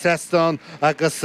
trasnán, agus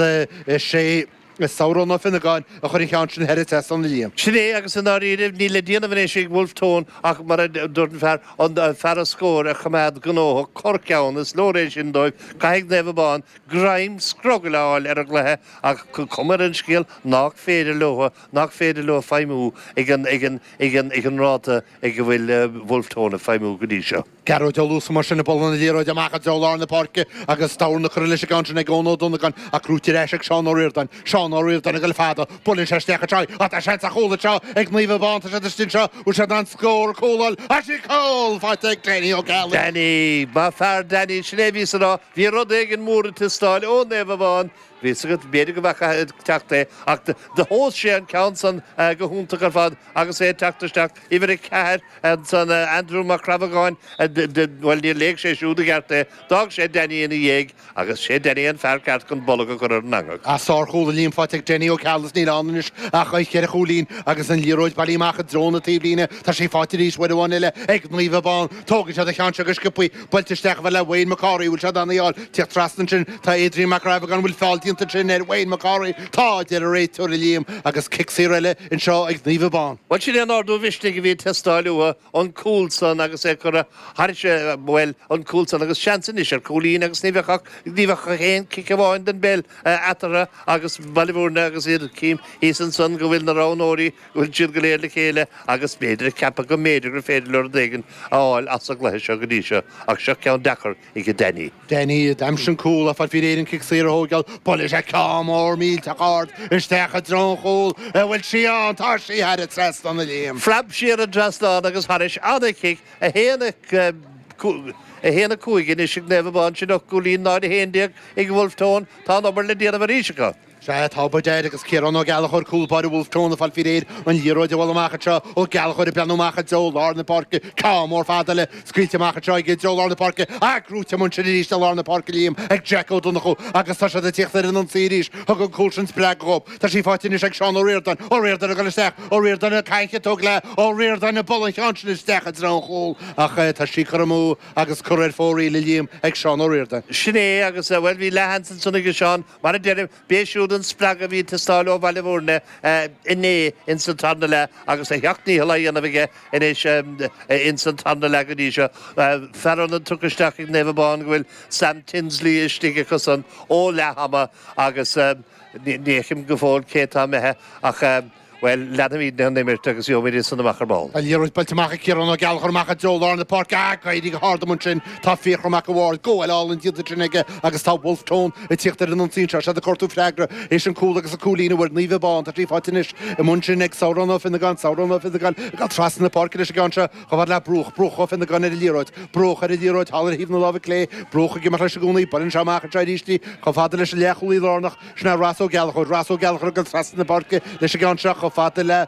is é Sárán Ó Fionnagáin a chuir an cheann sin thar an trasnán a Liam. Sin é, agus i ndáiríribh, níl le déanamh anois ag Wolfe Tone ach mar a dúirt an fear, an fear an scóir a choimeád gnóthach, corrcheann, is leor é sin dóibh, caithfidh Naomh Abán greim scrogaill a fháil ar an gcluiche, ach an cuma ar an scéal nách féidir leo, nách féidir leo feidhmiú ag an, ag an, ag an, ag an ráta ag a bhfuil Wolfe Tone ag feidhmiú go dtí seo. Gearóid Ó Luasa mar sin a buaileann an liathróid amach i dtreo lár na páirce agus is dorn a cuireadh leis an gceann sin ag Eoin Ó Donnagáin ach gnóite ar ais ag Seán Ó Ríordáin. Seán Ó Ríordáin ag dul le fada, buaileann sé isteach i dtráigh ach tá seans ar chúl anseo ag Naomh Abán, tá siad istigh anseo, bhfuil siad in ann scór a thóigeáil? Ach sí cúl! Faighte ag Danny Ó Ceallaigh! Danny, Maith fear Danny, sin é a bhíos a rá, bhí rud éigin mór ag teastáil ó Naomh Abán Bhí 'fhios agat, b'fhéidir, go bhfeaca ag teacht é, ach thomhas sé an ceann san go hiontach ar fad agus é ag teacht isteach, uimhir a ceathair, ansan, Aindriú Mac Crabhagáin, bhuel, níor léigh sé siúd i gceart é, d'fhág sé Danny ina dhéidh, agus 'sé Danny an fear ceart chun bolg a chur ar an eangach. Ach sárchúl a Liam faighte ag Danny Ó Ceallaigh is níl ann anois ach an cheithre chúilín, agus an liathróid bailithe amach i dtreo na taobhlíne, tá sí faighte arís uair amháin eile ag Naomh Abán, tógfaidh siad an ceann seo go sciopthaí, buailte isteach a bheith le Wayne Mac Cárthaigh, bhfuil sé in ann í a fháil teacht trasna ansin. Tá Adrian Mac Crabhagáin, bhfuil feall déanta ansin ar Wayne Mac Cárthaigh? Tá, a deir an réiteoir a Liam, agus cic saor eile anseo ag Naomh Abán. Bhuel, sin é an ardú mhisnigh a bhí ag teastáil uathu, an cúl san agus é curtha thairis, bhuel, an cúl san agus seans anois ar cúilín agus ní bheadh ach, ní bheadh ach aon chic amháin den bpeil eatarthu agus Baile Bhúirne agus iad cím thíos ansan go bhfuil na roghnóirí Bhfuil siad go léir le chéile agus b'fhéidir a ceapadh go mb'fhéidir gur féidir leo rud éigin a fháil as an gcluiche seo go dtí seo, ach seo ceann deacair, ige Danny. Danny, a d'aimsigh cúl ag fáil faoi réir an cic saor a thóigeáil, buaileann sé ceann mór millteach ard isteach i dtreo an chúil, a bhfuil sí ann, tá sí thar an trasnán a Liam. Phreab sí ar an dtrasnán agus thairis an-chic, 1, 5 anois ag Naomh Abán, sin 8 gcúilín, 0, 11 ag Wolfe Tone, tá an-obair le déanamh arís acu. Sea, tá by dad agus Ciarán Ó Gallchóir, cúl báire Bhulf Tón, ag fáil faoi réir an liathróid a bhualadh amach anseo. Ó Gallchóir ag breathnú amach i dtreo lár na páirce. Ceann mór fada eile scaoilte amach anseo aige i dtreo lár na páirce. Ach gnóite amuigh ansin arís i lár na páirce Liam ag Jack Ó Donnchú agus tá siad ag tíocht ar an ionsaí arís. Thug an cúl sin spreagadh dhóibh. Tá sí faighte anois ag Seán Ó Ríordáin. Ó Ríordáin ag dul isteach. Ó Ríordáin ag caint ag tógáil é. Ó Ríordáin ag bualadh an cheann sin isteach i dtreo an chúil ach tá sí curtha amú agus curtha ar fóraoil a Liam ag Seán Ó Ríordáin. Sin é agus, bhuel, bhí leath-sheans ansin aige Seán. Mar a deirim, b'é siúd an spreagadh a bhí ag teastáil ó Bhaile Bhuirne inniu ins an tarna leath agus a sheacht ndícheall á dhéanamh aige anois ins an tarna leath go dtí seo. Fear ionaid tugtha isteach ag Naomh Abán go bhfuil Sam Tinsley istigh acusan ó leathama agus ní fheicim go fóill cé tá imithe ach, Bhuel, leanfaimid den imirt agus gheobhaimid iadsan amach ar ball. An liathróid buailte amach ag Ciarán Ó Gallchóir amach i dtreo lár na páirce ach ag éirí go hard amach ansin tá Fiachra Mac a' Bhaird, gabháil álainn déanta ansin aige agus tá Bhulf Tón ag tíocht ar an ionsaí anseo. Iad ag cuartú freagra th'éis an cúl agus an cúilín a bhfuair Naomh Abán. Tá tríocha anois i mbun sin ag Sárán Ó Fionnagáin. Sárán Ó Fionnagáin ag dul trasna na páirce leis an gceann seo chomh fad le Bruach. Bruach Ó Fionnagáin ar an liathróid. Bruach ar an liathróid thall ar thaobh na láimhe clé. Bruach ag imeacht leis i gcónaí. Buaileann sé amach anseo arís í chomh fada leis an leathchúlaí lárnach. Sin é Ros Ó Gallchóir. Ros Ó Gallchóir ag dul trasna na páirce leis an gceann seo chomh fada le,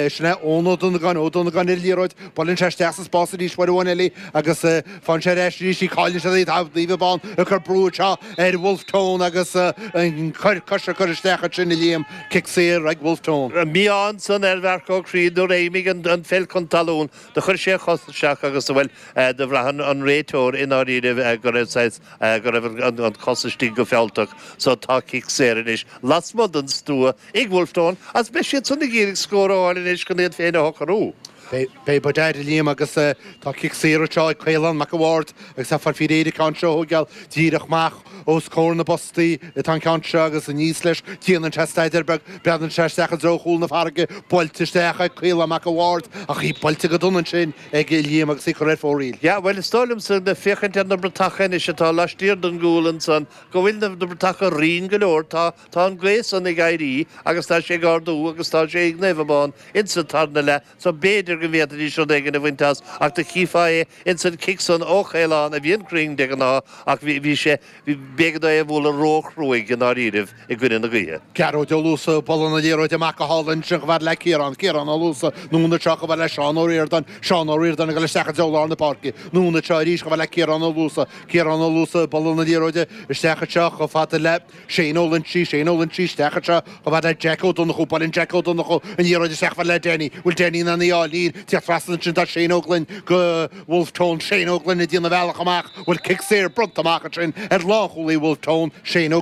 sin é Eoin Ó Donnagáin, Ó Donnagáin ar an liathróid, buaileann sé isteach sa spás arís uair amháin eile agus faigheann sé ar ais arís í, cailleann siad í, tá Naomh Abán ag cur brú anseo ar Wolfe Tone agus an cor coise curtha isteach ansin a Liam, cic saor ag Wolfe Tone. Bhí ansan ar Mharc Óg thíos nuair a imigh an pheil chun talún. Do chuir sé a chos isteach agus bhuel do bhraith an réiteoir i ndáiríribh go raibh saghas, go raibh an cos istigh go fealltach so tá cic saor anois lasmuigh den stua ag Wolfe Tone agus beidh siad san ag iarraidh scór a fháil anois chun iad féin a shocrú. Beidh, badad a Liam agus tá cic saor anseo ag Caolán Mac an Bhaird agus tá, ara, tá an ceann seo chóir a bheith díreach amach. Os comhair na bpostaí atá an ceann seo agus anois leis déanann sé staidéar beag, breathnaíonn sé isteach i dtreo chúl na farraige, buailte isteach ag Caolán Mac a' Bhaird, ach í buailte go dona ansin aige a Liam agus í curtha ar fóraoil. Yeah, bhuel, is dóigh liomsa, le féachaint ar na bratacha anois atá laistiar den gcúl ansan, go bhfuil na bratacha righin go leor, tá, tá an gaoth san ag éirí agus tá sé ag ardú agus tá sé ag Naomh Abán insa tarna leath. so b'fhéidir go bhféadfaidís rud éigin a bhaint as, ach do chífeá é ins an chic san ó Chaolán a bhíonn cruinn de ghnáth, ach bhí, bhí sé, bhí, b'éigean dó é a bhualadh róchruaidh i ndáiríribh i gcoinne na gaoithe. Gearóid Ó Luasa, ag bualadh na liathróide amach go hálainn sin, chomh fada le Ciarán, Ciarán Ó Luasa, anonn anseo, chomh fada le Seán Ó Ríordáin, Seán Ó Ríordáin, ag dul isteach i dtreo lár na páirce, anonn anseo arís, chomh fada le Ciarán Ó Luasa, Ciarán Ó Luasa, ag bualadh na liathróide isteach anseo chomh fada le. Shane Ó Loingsigh, Shane Ó Loingsigh, Isteach anseo chomh fada le Jack Ó Donnchú, Buaileann Jack Ó Donnchú an liathróid isteach chomh fada le Danny, bhfuil Danny in ann í a fháil, ag tíocht trasna ansin tá Shane Ó Gloinn do Wolfe Tone, Shane Ó Gloinn ag déanamh bealach amach, bhfuil cic saor bronnta amach ansin ar lánchúlaí Wolfe Tone, Shane Ó.